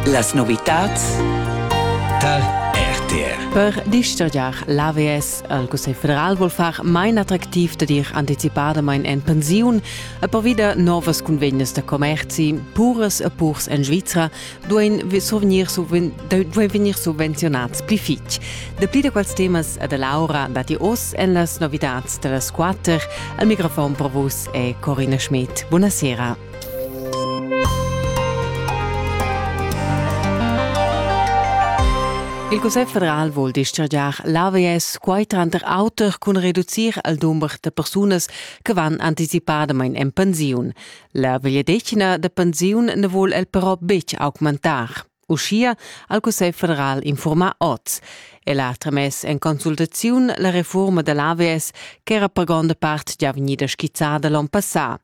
Las novitads tar RTR. Per dischargiar l'AVS al Cussegl federal vuol far main attractiv da dir anticipadamain en pensiun e per wieder novas convegnas da commerzi puras e purs en Svizra duein survegnir, duein vegnir subvenziunats pli fitg. Dapli da quels temas e da Laura datti oz en las novitads da las quatter. Al microfon per vus è Corina Schmidt. Buonasera. Il Cussegl federal vul dischargiar l'AVS quai tranter auter cun reducir il dumber da persunas che van anticipadamain en pensiun. La vegliadetgna da pensiun na vul el però betg augmentar. Uschia ha il Cussegl federal infurmà oz. El ha tramess en consultaziun la refurma da l'AVS ch'era per gronda part già vegnida skizzada l'onn passà.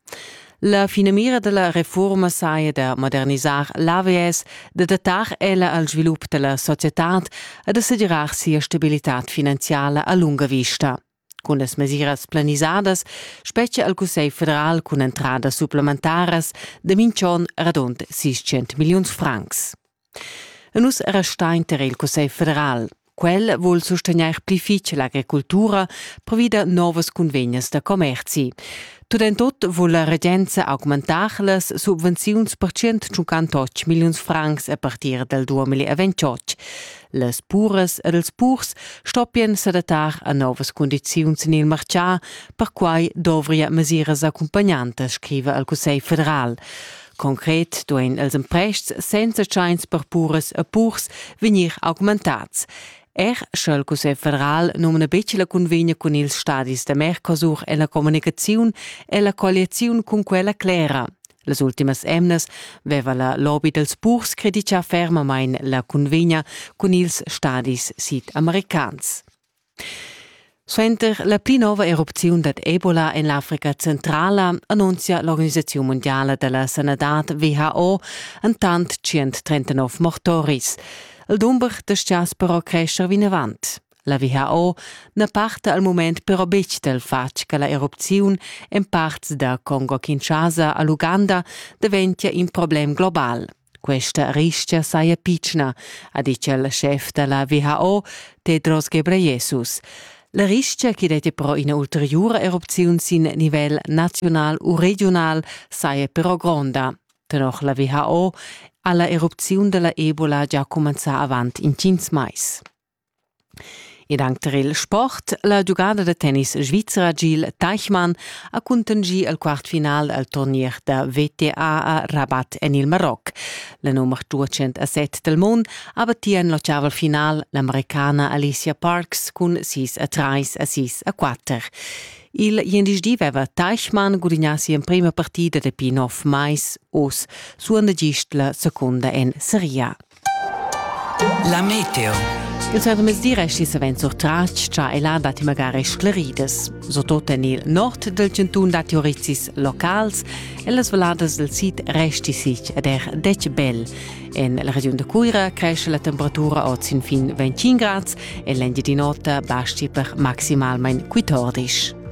La finamira da la refurma saja da modernisar l'AVS, da datar ella al svilup da la societad e da segirar sia stabilitad finanziala a lunga vista. Cun las mesiras planisadas spetga il Cussegl federal cun entradas supplementaras da minch'on radund 600 milliuns francs. Nus restain ter il Cussegl federal. Quel vul sustegnair pli fitg l'agricultura provida novas cunvegnas da commerzi. Tut en tut vul la regenza augmentar las subvenziuns per 158 milliuns francs a partir del 2028. Las puras ed els purs stoppien s'adattar a novas condiziuns en il martgà, perquai dovria mesiras accompagnantas, scriva al Cussegl federal. Concret duein els emprests senza tschains per puras e purs vegnir augmentats. Er sch'el Cussegl federal numna betg la cunvegna cun ils stadis da Mercosur e la communicaziun e la colliaziun cun quella clera. Las ultimas emnas veva la lobby dals purs credità fermamain la cunvegna cun ils stadis sid-americans. Suenter la pli nova erupziun dad Ebola en l'Africa centrala annunzia l'organisaziun mondiala da la sanadad WHO entant 139 mortoris. Il dumber da stias però cresce vinavant. La WHO na parta al mument però betg dal fatg che la erupziun en parts da Congo-Kinshasa a l'Uganda daventia in problem global. Questa ristga saja pitschna, ha ditg il schef da la WHO, Tedros Ghebreyesus. La ristga che dat però ina ulteriura erupziun sin nivel naziunal u regional saja però gronda. Tenor la WHO ha la erupziun della Ebola già cumenzà avant intgins mais. Ed anc tar il sport. La giugada da tennis svizra Gil Teichmann ha cuntanschì il quartfinal al turnier da WTA a Rabat en il Maroc. La nummer 207 del mund ha battì en l'ottaval final l'Americana Alicia Parks cun 6 a 3 a 6 a 4. Il gliendisdi veva Teichmann gudignà sia emprima partida dapi nov mais. Oz suonda gist la secunda en Serie A. La meteo. Il sadomezdi resti savens surtras cha e là datti magari scleridas. Surtot en il nord del cantun datti orizis locals e las valadas del sid resti sich ed er dec bel. En la regiun de Cuira cresce la temperatura od sin fin 25 grads e l'engiadin'ota basti per maximalmain 14.